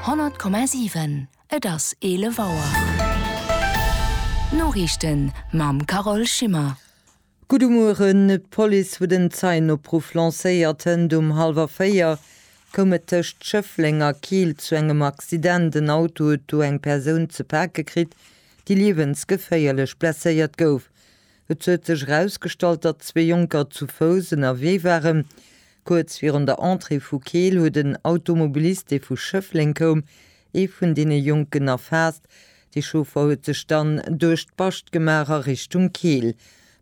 100,7 Et ass 11 Auer. D'Noriichten mam Carole Schimmer. Gudde Mueren. D'Police huet en Zeienopruff lancéiert. Hënt um hallwer 4 koum et tëscht Schëffleng a Keel zu engem Accident. En Auto huet do eng Persoun ze pake kritt, déi liewensgeféierlech blesséiert gouf. Et huet sech erausgestallt, datt zwee Jonker zu Fouss ënnerwee waren. Kuerz virun der Entrée vu Keel huet en Automobilist, dee vu Schëffleng koum, ee vun deene Jonken erfaasst. De Chauffer huet sech dann duerch d'Bascht gemaach a Richtung Keel.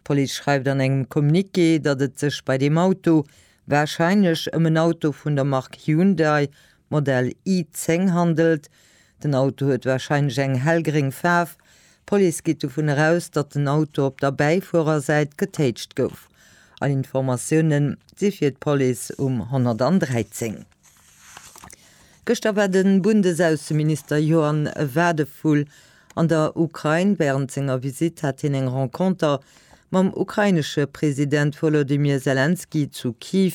D'Police schreift an engem Communiqué, datt et sech bei deem Auto warscheinlech ëm en Auto vun der Mark Hyundai Modell i-10 handelt. Den Auto huet warscheinlech eng hellgréng Faarf. D'Police geet dovun eraus, datt den Auto op der Bäifuerersäit getéitscht gouf. All Informatioune si fir d'Police um 113. Gëschter war de Bundesaußenminister Johann Wadephul an der Ukrain. Wärend senger Visitt hat hien eng Renconter mam ukrainesche President Wolodymyr Selenskyj zu Kiew.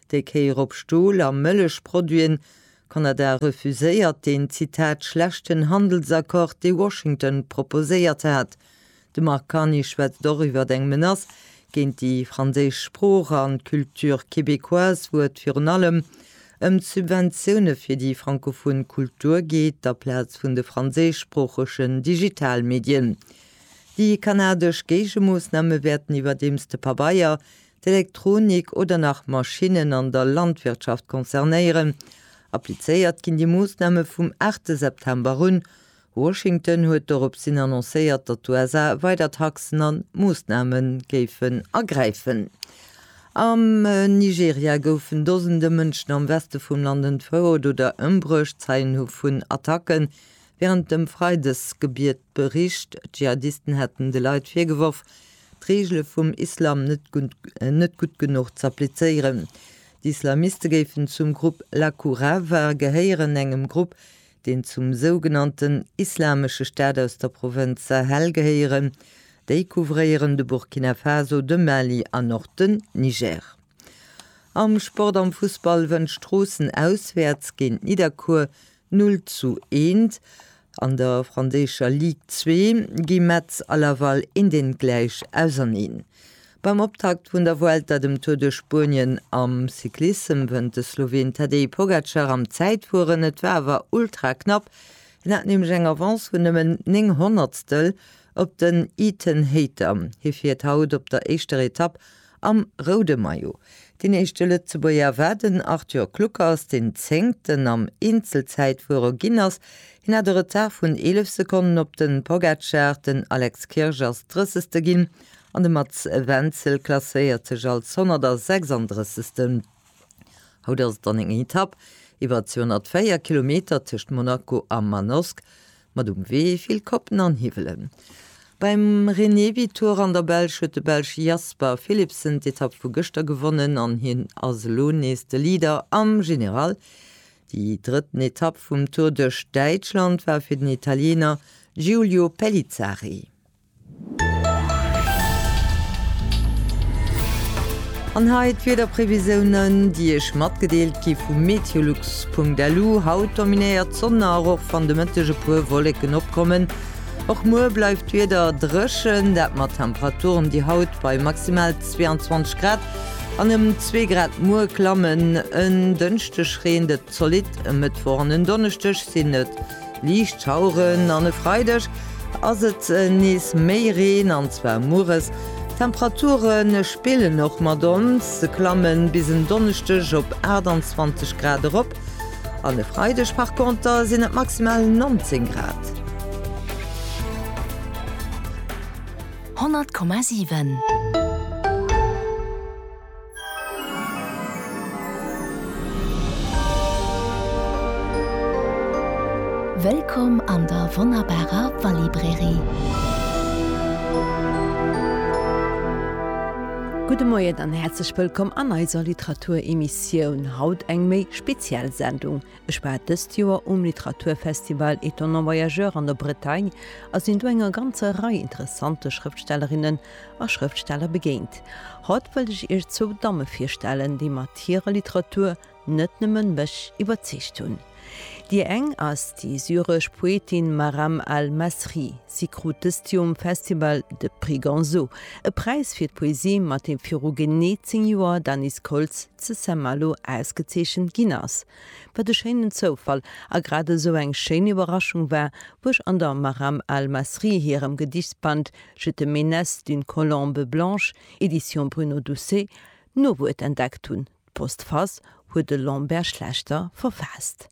Déi Kéier op Stol a Mëllechproduiten. Kanada refuséiert deen, Zitat, schlechten Handelsaccord, dee Washington proposéiert hat. De Mark Carney schwätzt och iwwer eng Menace géint déi franséisch Sprooch an d'Culture québécoise. Wou et virun allem ëm d'Subventioune fir déi frankophon Kultur geet, aplaz vun de franséischsproochegen Digitalmedien. Déi kanadesch Géigemoossname wäerten iwwerdeems de Pabeier, d'Elektronik oder nach Maschinnen an der Landwirtschaft concernéieren. Applizéiert ginn déi Moossname vum aachte September un. Washington huet dorops hin annoncéiert, datt d'USA weider Taxen an Moossname géifen ergräifen. Am Nigeria goufen Dosende Mënschen am Weste vum Land entfouert oder ëmbruecht. Zeien hu vun Attacken Wärend dem Freidesgebiet bericht d'Dschihadisten hätten de Leit virgeworf, d'Reegele vum Islam net gutt genuch z'applizéieren. D'Islamiste géifen zum Grupp Laku Rava gehéieren, engem Grupp, deen zum sougenannten Islamesche Staat aus der Provënz Sahel gehéieren. Déi couvréieren de Burkina Faso, de Mali an och den Niger. Am Sport, am Fussball wënnt Stroossen auswäerts géint Nidderkuer Null zu eent. An der franséischer Ligue 2 gi Metz a Laval eendentgläich auserneen. Beim Optakt vun der Vuelta, dem Tour duerch Spuenien am Cyclissem, wënnt de Sloween Tadej Pogacar am Zäitfueren. Et war awer ultra knapp, hien hat nämlech eng Avance vun nëmmen 9 Honnertstel op den Ethan Hayter. Hie fiert haut op der éischter Etapp Am roude Maillot, deen éischte Lëtzebuerger, war den Arthur Kluckers, deen Zéngten am Eenzelzäitfuere ginn ass. Hien hat e Retard vun 11 Sekonnen op de Pogacar, den Alex Kirsch ass Drëssegste ginn an de Mats Wenzel klasséiert sech als 136. Haut ass et an enger Etapp iwwer 204 Kilometer tëscht Monaco a Manosque. mat um Wee vill Koppen an Hiwwelen. Beim Renevy-Tour an der Belsch huet de Belsch Jasper Philipsen d'Etapp vu gëschter gewonnen an hien ass elo nees de Leader am General. Déi drëtten Etapp vum Tour duerch Däitschland war fir den Italiener Giulio Pellizzari. An hei d'Wiederprevisiounen, déi Iech matgedeelt gi vu meteolux.lu, Haut dominéiert d'Sonn nach, och wann de Mëtteg e puer Wolleken opkommen. Och muer bleift d'Wieder dréchen, dat mat Temperaturen, déi haut bei maximal 22 Grad an ëm zwee Grad muer klammen. En Dënschdeg reent et zolidd, e Mëttwoch an en Donneschdeg sinn et Liicht Schaueren an e Freideg ass et nees méi Reen, an zwar mueres. D'Temperature spillen och mat ons, se klamme bis en Donneschdeg op 28 Grad erop an e Freideg par conter sinn et maximal 19 Grad. 100,7. Wëllkomm an der wonnerbarer Wallibrairie! Gudde Moien an häerzlech wëllkomm an eiser Literatur-Emissioun. Haut eng méi speziell Sendung. Ech war dëst Joer um Literaturfestival Étonnants Voyageurs an der Bretagne a sinn do enger ganzer Rei interessante Schrëftstellerinnen a Schrëftsteller begéint. Haut wëllt ech Iech zwou Damme virstellen, déi mat hirer Literatur net nëmmen mech iwwerzeegt hunn. Déi eng ass déi syresch Poetin Maram Al Masri. Si krut dëst Joer um Festival de Prix Gonzo, e Präis fir d'Poesie, mat deem viru genee zéng Joer d'Anis Koltz, zu Saint-Malo ausgezeechent ginn ass, wat e schéinen Zoufall a grad esou eng schéin Iwwerraschung war, wou ech an der Maram al-Masri hirem Gedichsband Je te menace d'une colombe blanche, Edition Bruno Doucet, d'Nowuert entdeckt hunn, D'Postface huet de Lambert Schlechter verfaasst.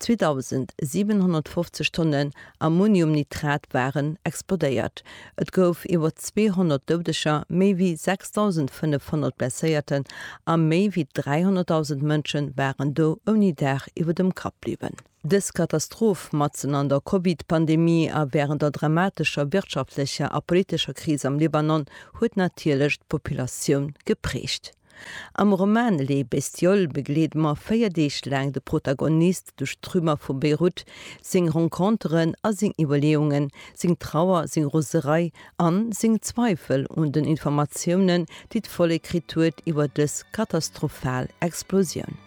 2.750 Tonnen Ammoniumnitrat waren explodéiert. Et gouf iwwer 200 Doudeger, méi wéi 6.500 Blesséierten a méi wéi 300.000 Mënsche waren do ouni Daach iwwer dem Kapp bliwwen. Dës Katastroph, matzen an der Covid-Pandemie a wärend der dramatescher wirtschaftlecher a politescher Kris am Libanon, huet natierlech d'Populatioun geprägt. Am Roman Les bestioles begleede mer véier Deeg laang de Protagonist duerch d'Trümmer vu Beirut, seng Renconteren a seng Iwwerleeungen, seng Trauer, seng Roserei an seng Zweifel un den Informatiounen, déi d'Vollek kritt huet iwwer dës katastrophal Explosioun.